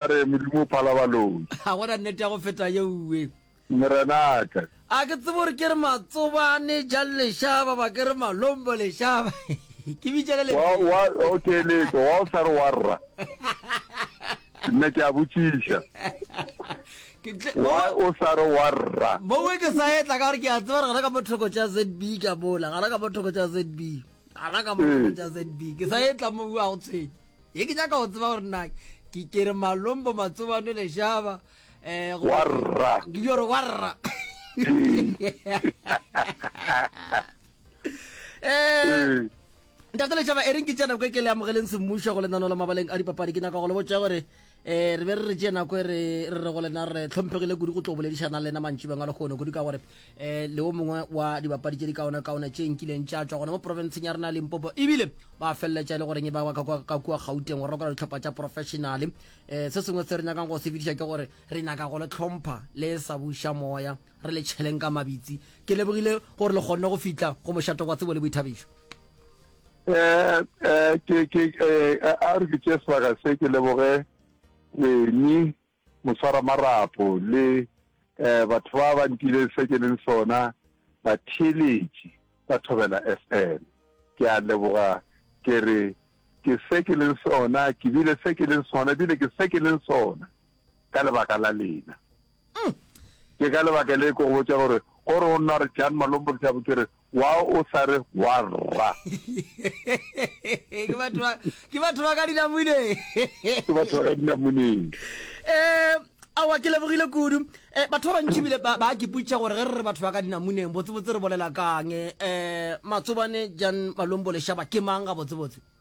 Ba re, Modimo o phala baloi. Ga go na nnete ya go feta yeuwe. Morenaka. A ke tsebe gore ke re Matsobane, Jang Lešaba, ba ke re Malombo Lešaba. Ke bitša ka lentšu leo. Wa, wa, o keletso, wa o sa re wa rra. Nna ke a botšiša. Wa o sa re wa rra. Mowe ke sa etla ka gore ke a tseba gore gana ka mo thoko tša ZB ke a mola, gana ka mo thoko tša ZB. Gana ka mo thoko tša ZB. Ke sa etla mowe a go tshwenye. Ye ke nyaka go tseba gore na ke kere malombo matsobane lešaba eh go warra ke gore warra eh ntate lešaba e reng ke tsena ko ke le amogeleng semmušo go lenano la mabaleng a dipapadi ke nyaka go le botša gore eh re be re re tšee nako e re re re go lena re tlhomphegile kudu go tlo boledišana lena mantši bengwe lekgono kudu ka gore um le o mongwe wa dibapadi tše di kaona kaona tše nkileng tša tšwa gona mo porofenseng ya rena ya limpopo ebile ba feleletša e le goreng e ba ka kua gauteng go rakola ditlhopha tša professionale um se sengwe se re nyakang go se fediša ke gore re nyaka go le tlhompha le sa buša moya re le tšheleng ka mabitsi ke lebogile gore le kgonne go fitlha go mošato kwa tsebo le boithabišo A re ke tšee sebaka se ke leboge Kweni moswaramarapo le batho ba ba ntileng se ke leng sona, batheeletši ba Thobela FM. Ke a leboga, ke re ke se ke leng sona, ke bile se ke leng sona, ebile ke se ke leng sona ka lebaka la lena. Ke ka lebaka le ke go botša gore go re o nna re Jan Malombo ke tšabo ke re wa o sa re wa rra. Ke batho ba ke batho ba ka dinamuneng. Ke batho ba ka dinamuneng. Eh awa ke lebogile kudu eh batho ba bantši bile ba ba kiputša gore ge re re batho ba ka dinamuneng botse botse re bolela kang eh matsobane Jan Malombo lešaba ke mang ga botse botse.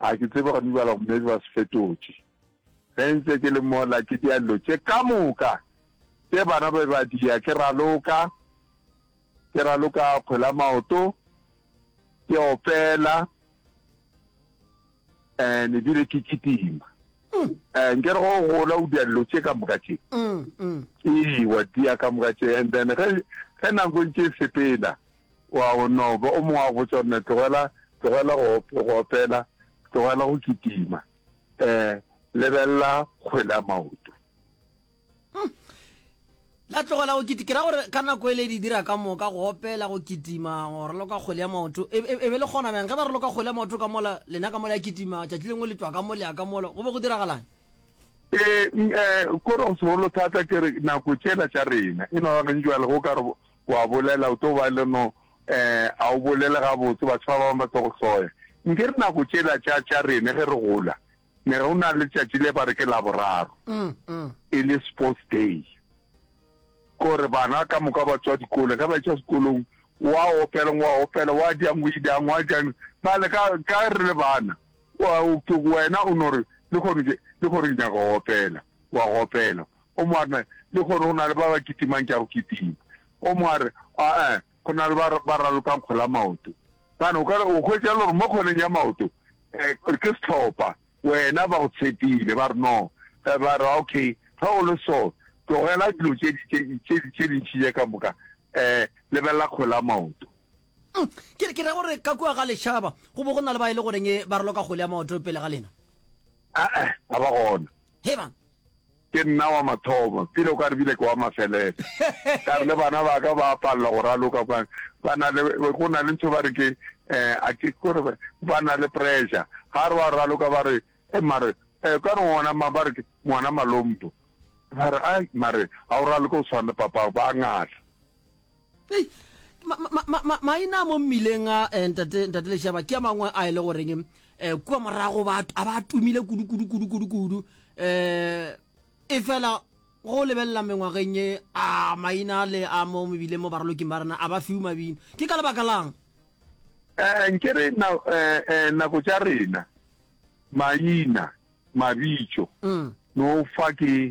A ke tsebe gore mibala go maybe ba se fetotše. Ge ntse ke le mola ke dia dilo tše ka moka tše bana ba be ba dia, ke raloka, ke raloka kgwela maoto, ke opela and ebile ke kitima. Eh, nke re go gola o dia dilo tše ka moka tše. Ee, wa dia ka moka tše and then ge ge nako e ntše e sepela, O a o no ba. O mongwe a botša, Mme, tlogela, tlogela go, go opela, tlogela go kitima. Eh, lebelela kgwele a maoto. Hmm. La tlogela go kitima. Ke ra gore ka nako ele di dira ka moka, go opela, go kitima, go roloka kgwele ya maoto. E, e, e be le gona bjang? Ge ba roloka kgwele ya maoto ka mola, lena ka mola ya kitima, tšatši lengwe le tšwa ka molea ka mola, go be go diragalane? Eh, eh, kore go segolo thata ke re nako tšela tša rena, e no ba gentši jwale go ka re O a bolela, o tlo ba le no, eh, a o bolele gabotse, batho ba bangwe ba tlo go hloya. Nke re nako tšela tša, tša rene ge re gola, ne go na le tšatši le ba re ke Laboraro, mm, mm. e le sports day. Kore bana ka moka ba tswa dikolo, ge ba tša sekolong, wa opela, wa opela, wa diang, o idang, wa diang, ba le ka, ka re le bana, wena o no re, le gore, le gore nyaka go opela, wa go opela, O mo a re, Lehono go na le ba ba kitimang tša go kitima. O mo a re, A-a, go na le ba ba ralokang kgole ya maoto. Gane o ka re, O hwetša le gore mo kgoleng ya maoto eh, ke sehlopha, wena ba go tshepile. Ba re, No. Eh, ba re, Okay, ge go le so, tlogela dilo tše di, tše, tše, tše dintši tše ka moka, eh, lebelela kgole ya maoto. Mm, ke, ke ra gore ka kua ga lešaba go bo go na le ba e le goreng ba raloka kgole ya maoto pele ga lena. A-a, ga ba gona. He bang, Ke nna wa mathomo, pele o ka re bile ke wa mafelelo. Ka re le bana ba ka ba palela go raloka kwa, ba na le, go na le ntho ba re ke, eh, a ke kore ba, ba na le pressure. Ga re wa raloka ba re, eh, mare, eh, ka re ngwana ma, ba re ke ngwana Malompo. Ba re, ai, mare ga o raloke o tshwana le papago, ba ngala. Hey, ma, ma, ma, ma, maina a mo mmileng a eh, ntate, ntate lešaba ke a mangwe a e le goreng um eh, kua morago ba a ba a tumile kudu kudu kudu kudu kudu um e fela go lebelela mengwageng e a maina le a mo mebileng mo baraloking ba rena a ba fiwe mabino ke ka lebaka lang Eh, nke re na, eh, eh, nako tša rena maina mabitšo mm. no fa ke